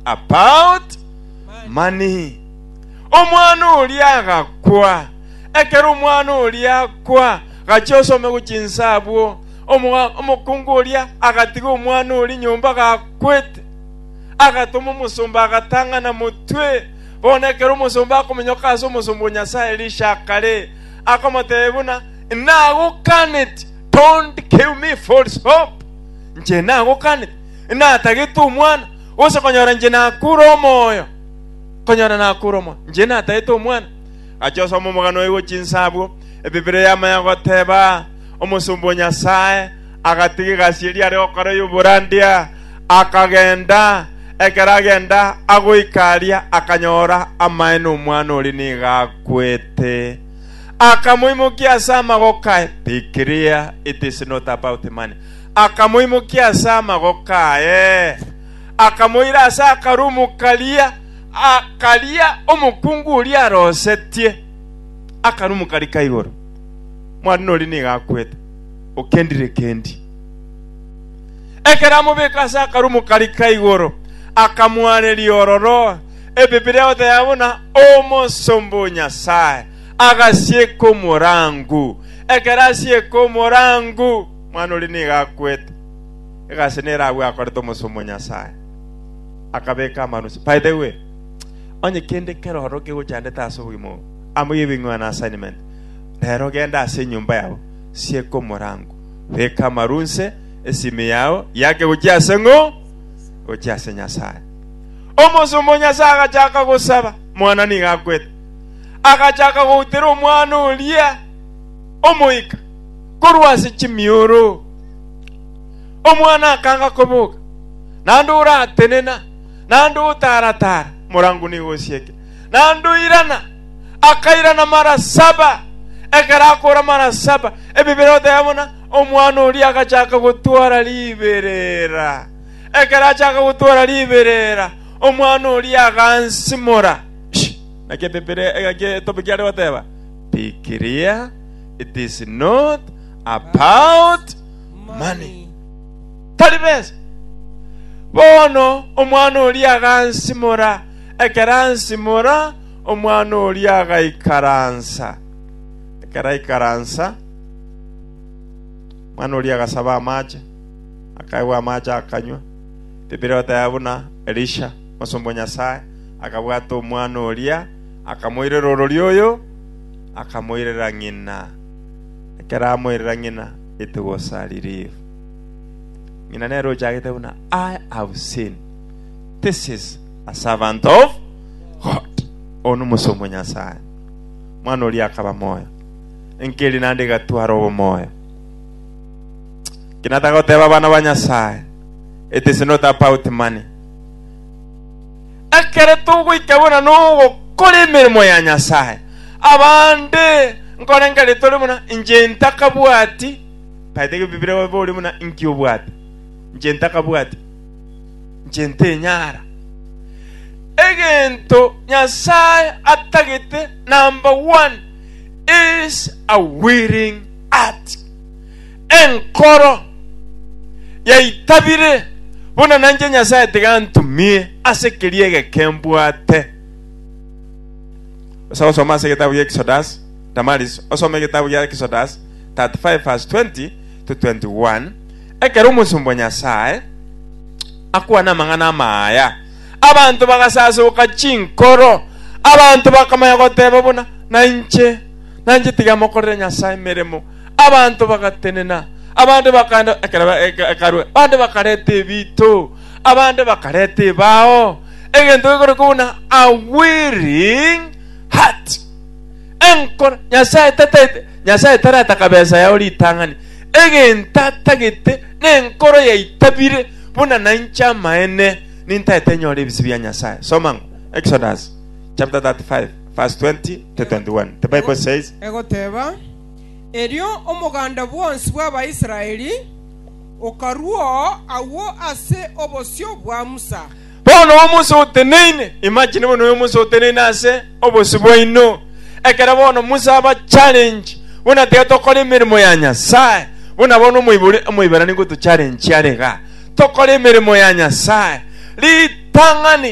About money. Omwana oria agakwa. Ekero omwana oria akwa, gachia osome go chinsa abwo. Omwa- Omokungu oria agatiga omwana oria nyomba gakwete. Agatoma omosomba agatang'ana motwe. Bono ekero omosomba akominyoka ase omosomba o Nyasaye Elisha akare, akomotebia buna, Nagokaneti, don't give me false hope. Inche nagokaneti, natagete omwana, Onsi okonyora inche nakure omoyo, okonyora nakure omoyo, inche natagete omwana. Agacha osoma omogano oye gochia inse abwo. Ebibira yamanya goteba omosomba o Nyasae, agatiga egasi eria are gokora y'oborandia, akagenda. Ekero agenda agoika aria, akanyora amaye nomwana oria nigo akwete. Akamoimokia ase amagoko aye. Be clear, it is not about money. akamoimokia ase amagoko aye, akamoira ase akarumu karia karia omokungu oria arosetie akarumu karia ka igoro. Mwanene oria nigo akwete, Okendirekendi! Ekero amobeka ase akarumu karia ka igoro, akamwareria ororo Ebibilia goteba buna omosomba o Nyasae agasieka omorangu. Ekero asieka omorangu, Omwana oria nigo akwete, egasi nere agwo akorete omosumu o Nyasae, akabeka amanusa. By the way, onye kende keroro kegochandete ase obogima obo, amo yebing'wa na assignment, rero genda ase enyomba yabo, sieka omorango, beka amarunse, esimi yao yake gochia ase ng'o? Gochia ase Nyasae. Omosumu o Nyasae agachaka gosaba, mwana nigo akwete, agachaka goutera omwana oria omoika. korwa ase chimioro. Omwana akanga koboka, naende oratenena, naende otaara-taara morango nigo osieke, naende oirana, akairana mara saba. Ekero akoora mara saba, Ebibera oteba buna omwana oria agachaka gotwara riberera. Ekero achaka gotwara riberera, omwana oria agansimora. Shi, naki ebibera, naki etobe kiare goteba, Pikiria, It is not about money. Tari besa. Bono omwana oria agansimora, ekero ansimora, omwana oria agaikaransa. Ekero aikaransa, omwana oria agasaba amache, akaegwa amache akanywa. Biblia egoteba buna Elisha, omosomba o Nyasae, akabwata omwana oria, akamoirera orori oyo, akamoirera ng'ina. Ekero amoirera ng'ina, etegwa osaririgwe. Ng'ina nere ochagete buna, I have seen, this is a servant of God. Oyo nomosomi o Nyasae. Mwana oria akaba moyo. Enkeri nande egatwara obomoyo. Kinataka goteba abana ba Nyasae, it is not about money. Ekero togoika buna nogokora emeremo ya Nyasae, abande nkorengari tore buna inche ntakabwati, taete gebibiria obe ore buna inki obwate, inche ntakabwati, inche ntenyara. Egento Nyasae atagete, number one, is a willing heart. Enkoro yaitabire, buna nanche Nyasae tiga antumie ase keria egeke mbwate. Osa gosoma ase egetabu gia Exodus, Damaris, osome egetabu gia Exodus 35 verse 20 to 21. Ekero omosomba o Nyasae akwana amang'ana ama aya, abanto bagasasoka chinkoro. Abanto bakamanya goteba buna, Nainche, nainche tiga mokorere Nyasae emeremo. Abanto bagatenena, abande bakaenda ekero ekarue, abande bakareta ebito, abande bakareta ebao, egento gekorokwa buna a willing heart. Enkoro Nyasaye tataete Nyasaye tarataka besa yao ritang'ani. Egento atagete nenkoro yaitabire buna nainche amaene nintaete enyore ebise bia Nyasaye. Soma ng'o Exodus chapter 35 verse 20 to 21. The Bible says, Egoteba, Erio omoganda bwonsi bw'Abaisraeli okarua oo agwo ase obosio bwa Musa. Bono Musa oteneine, imagine bono oyo Musa oteneine ase obosio bwaino. Ekero bono Musa aba challenge, buna tiga tokore emeremo ya Nyasae, buna bono omoibori omoibarani gotocharenchia are iga, tokore emeremo ya Nyasae. Ritang'ani.